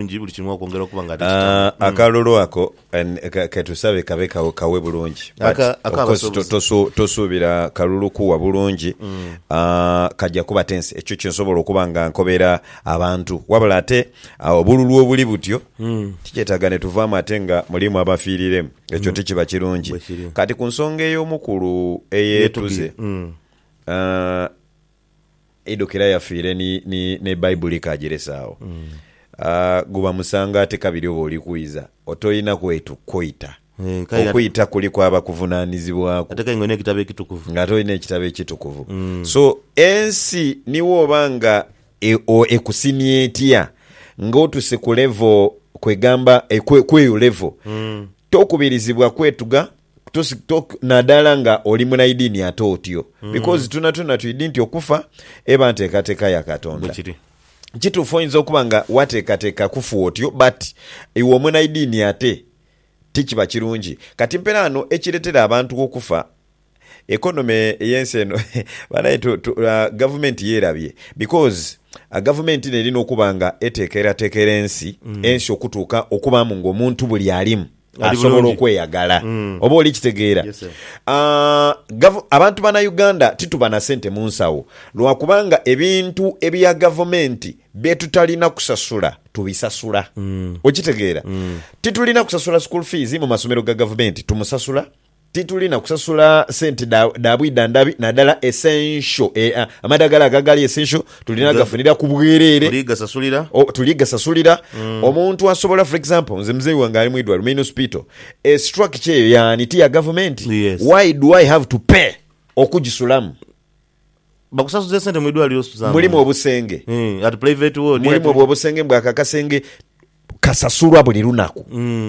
bulungi buli kimu okwongera okuba nga ni kitamu. Ah, akalulu ako en- ka- ketusabe kabe ka- kawe bulungi but Aka- of course ak'abasobozi. to- tosu- tosuubira kalulu kuwa bulungi Ah, kaja kuba tense ekyo kyensobola okuba nga nkobera abantu wabula ate ah, obululu obuli butyo tikyetaaga netuvaamu ate nga mulimu abafiiriremu ekyo tikiba kirungi Bwekiri. kati ku nsonga ey'omukulu eyeetuze Yetuge. Mm. ah, Eidhukira yafiire ni, ni, n'Ebaibuli ekaajeresa agho. Aah, guba musango ate kabiri oba oli kwidha, otoina kwetu, kweita. Eeh, kale nga. Okwita kuliku abakuvunaanizibwaku. Ate kale nga olina Ekitabo Ekitukuvu. Ng'ate olina Ekitabo Ekitukuvu. So, ensi ni bwooba nga e, o, ekusimya etya, ng'otuse ku level, kwegamba, e, ku, ku eyo level, tokubirizibwa kwetuga. Tosi, to, nadala nga oli munaidini ate otyo, because twonatwona twidi nti okufa eba ntekateka ya Katonda. Bwekiri. Kitufu oyinza okuba nga watekateka kufu otyo but iwe omunaidini ate tikiba kirungi. Kati mpera ano ekiretera abantu okufa economy eyensi eno banaye tu, tu, a, gavumenti yerabye because a, gavumenti eno erina okuba nga etekeratekera ensi, ensi okutuuka okubamu nga omuntu buli alimu. asobola okweyagala. Oba oli kitegeera? Abantu bana Uganda tituba na sente mu nsawo lwa kubanga ebintu ebya gavumenti bye tutalina kusasula tubisasula. Okitegeera? Titulina kusasula school fees mu masomero ga gavumenti tumusasula. Tituli na kusasula sente dha dha bwidha ndhabi nadala essential e, a, amadhagala ago agali essential tulina Nga- gafunira ku bwerere. Tuli gasasulira. O, tuli gasasulira. Omuntu asobola for example nze muzeeyi wange ali mwidwaliro main hospital e structure eyo yaani ti ya gavumenti Yes. why do I have to pay okugisulamu? Bakusasuza esente mu idwaliro Suzano. Mulimu obusenge. Eeh at private ward. Mulimu obwo obusenge mbu ako akasenge kasasulwa buli lunaku.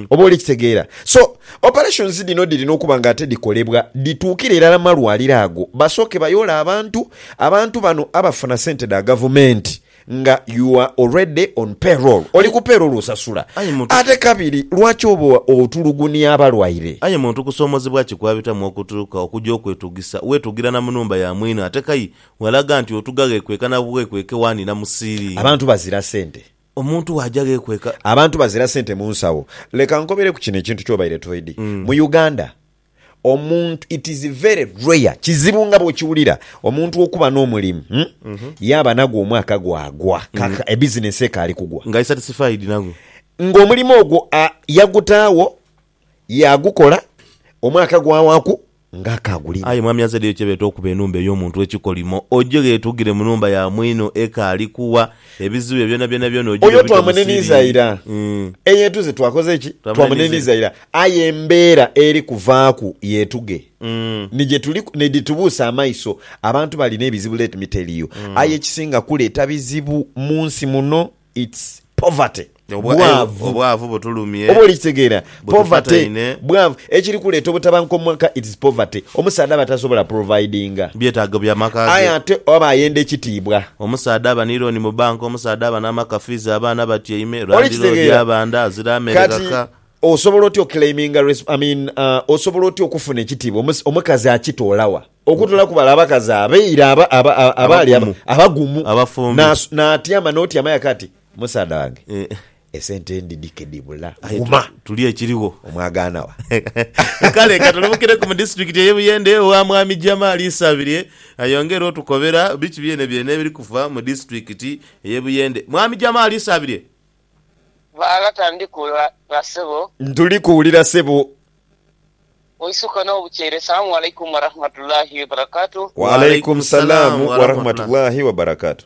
Oba oli kitegeera. So operations dhino dhirina okuba nga ate dhikolebwa dhituukire irala mu malwaliro ago basooke bayole abantu. Abantu bano abafuna sente dha gavumenti nga you are already on payroll oli ku payroll osasula Aye muntu. ate kabiri lwaki oba otulugunia abalwaire. Aye muntu kusomozebwa ki kwabitamu okutuuka okuja okwetugisa wetugira na munumba ya mwine ate kai walaga nti otuga ghekweka na bwekweke wani na mu ceiling. Abantu bazira sente. Omuntu waja ghekweka. Abantu bazira sente munsawo. Leka nkobereku kino ekintu kyobaire toidhi. Mu Uganda. Omuntu, it is very rare, kizibu nga bwokiwulira omuntu okuba nomulimu yaaba nagwo omwaka gwagwa kaka e business ekaali kugwa. Nga ali satisfied nagwo. Nga omulimu ogwo a yagutaagho yagukola omwaka gwawaku nga akaagulina. Aye mwami azaddeyo kyebeeta okuba enumba ey'omuntu ekikolimo. Oje ghetugire munumba ya mwino ekaali kugha Ebizibu bye byonabyona byona ogira Oyo obita mu twamunenhiiza ira. siringi. Eyeetuze twakoze ki? Twamunenhiiza Twamunenhiiza ira. Aye embeera eri kuvaaku yeetuge ni gye tuli ni dhitubuusa amaiso. Abantu balina ebizibu let me tell you. Aye ekisinga kuleeta bizibu mu nsi muno it's poverty. Obwavu butulumye. Oba olikitegeera? Poverty, bwavu. Ekiri kuleeta obutabanguko mu maka, it's poverty. Omusaadha aba tasobola providinga. Byetaago bya maka ge. Aye ate aba ayenda ekitiibwa. Omusaadha aba ni looni mu banka, omusaadha aba n'amaka, fiizi abaana batyaime, landiloodi abanda, azira amere ghaka. Kati osobola otya okileiminga, I mean, osobola otya okufuna ekitiibwa? Omukazi akitola wa? Okutola ku bale abakazi abaire abaali abagumu, n'atyama n'otyama aye kati? Musaadha wange esente ndidhike dhibula. Guma. Tulye ekirigho. Omwagaana wa? Kale ka tulemukireku mu disiturikiti ey'e Buyende ewa Mwami Jamal Isabirye ayongere otukobera biki byenebyeene ebiri kufa mu disiturikiti ey'e Buyende. Mwami Jamal Isabirye. Baalata ndi kuwulira sebo. Ntuli kuwulira sebo. Oisukka n'obukyeere. Assalamu Alaikum Warahmatullahi Wabarakatuh. Wa Alaikum Salaam Warahmatullahi Wabarakatuh.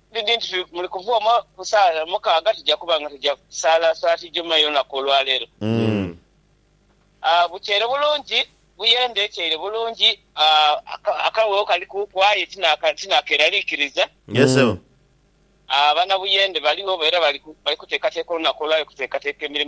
Dhidhi nti muli kuva omo ku saala mukaaga tuja kuba nga tuja saala swati Juma ey'olunaku olwa leero. Bukyeire bulungi, buyende ekyeire bulungi, akaghegho kalikuuku aye tinakeeraliikiriza. Abanabuyende baligho era bali kuteekateeka olunaku olwa leero okuteekateeka emirimo.